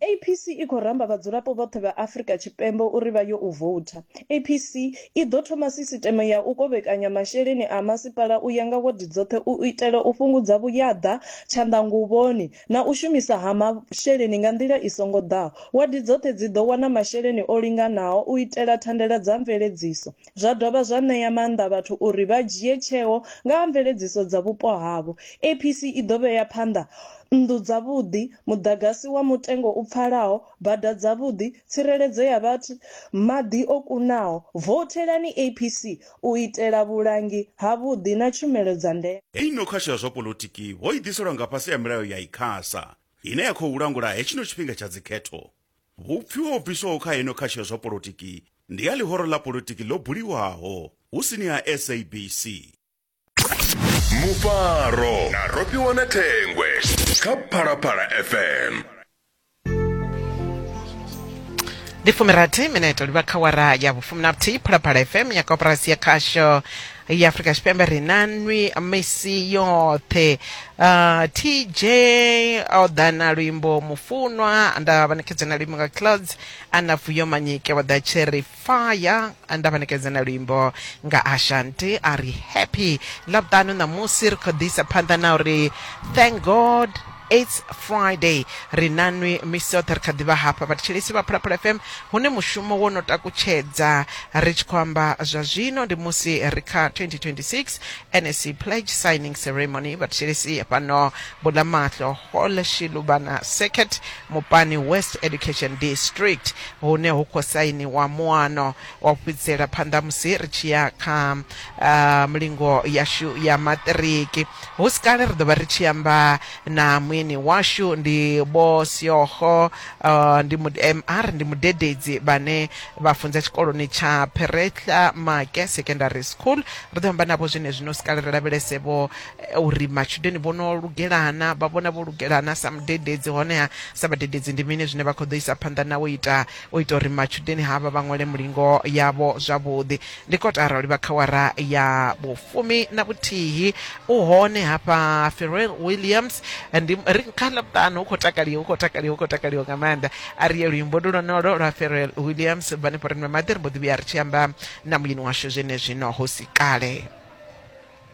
APC i khou ramba vhadzulapo vhoṱhe vha Afrika Tshipembe uri vha yo u voutha. APC i ḓo thoma sisiteme ya u kovhekanya masheleni a masipala u ya nga wadi dzoṱhe u itela u fhungudza vhuyaḓa, tshanḓanguvhoni na u shumisa ha masheleni nga nḓila i songo ḓaho. Wadi dzoṱhe dzi ḓo wana masheleni o linganaho u itela thandela dza mveledziso. zwa dovha zwa ṋea maanḓa vhathu uri vha dzhie tsheo nga ha mveledziso dza vhupo havho. APC i ḓo vhea phanḓa nnḓu dzavhuḓi, muḓagasi wa mutengo u pfalaho, bada dzavhuḓi, tsireledzo ya vhathu, maḓi o kunaho. Vouthelani APC u itela vhulangi havhuḓi na tshumelo dza ndeme. Heyi nokhasho ya zwa poḽotiki ho i ḓiselwa nga fhasi ha milayo ya Icasa, ine ya khou langula hetshino tshifhinga tsha dzikhetho. Vhupfi ho bviswaho kha heno kha tsha zwa polotiki ndi ha ḽihoro ḽa polotiki ḽo buliwaho hu sini ha SABC. Mufaro na Rofhiwa na Thengwe kha Phalaphala FM. Ndi fumirathi minete u livha kha awara ya vhufumi na vhuthihi Phalaphala FM ya koporasi ya Khasho. ya afrika tshipembe ri na nwi misi yoṱhe uh, tj o ḓa na luimbo mufunwa nda vhanekedza na luimbo nga clouds ana vuyo manyike vha ḓa cherry fire nda vhanekedza na luimbo nga ashanti a ri happy ḽavhuṱanu ṋamusi ri khou ḓisa phanḓa na uri thank god aids friday ri nanwi misi yoṱhe ri kha ḓivha hafha vhathetshelesi vha phalaphala fm hune mushumo wo no takutshedza ri tshi khou amba zwa zwino ndi musi ri kha 2026 nsc pledge signing ceremony vhathetshelesi fhano bulamaṱlo hall shilubana circuit mupani west education district hune hu khou sainiwa muano O fhedzisela phanḓa musi ri tshi ya kha milingo yashu ya maṱiriki. Hu si kale ri ḓo vha ri tshi amba na mueni washu, ndi Vho Seoho, ndi MR, ndi mudededzi, vhane vha funza tshikoloni tsha Pheretlha Make Secondary School. Ri ḓo amba navho zwenezwino. Hu si kale ri lavhelese vho uri matshudeni vho no lugela na, vha vhona vho lugela na sa mudededzi, honeha sa vhadededzi ndi mini zwine vha khou ḓo isa phanḓa na u ita. U ita uri matshudeni havha vha ṅwale mulingo yavho zwavhuḓi, ndi kotara u livha khawara ya vhufumi na vhuthihi. U hone hafha Pharrell Williams, ndi ri kha ḽavhuṱanu hu khou takaliwa, hu khou takaliwa, hu khou takaliwa nga maanḓa. A ri ye luimbo ndi lwonolo lwa Pharrell Williams, bva hanefho ri nwe maḓi, ri mbo ḓi vhuya ri tshi amba na muyeni washu zwenezwino hu si kale.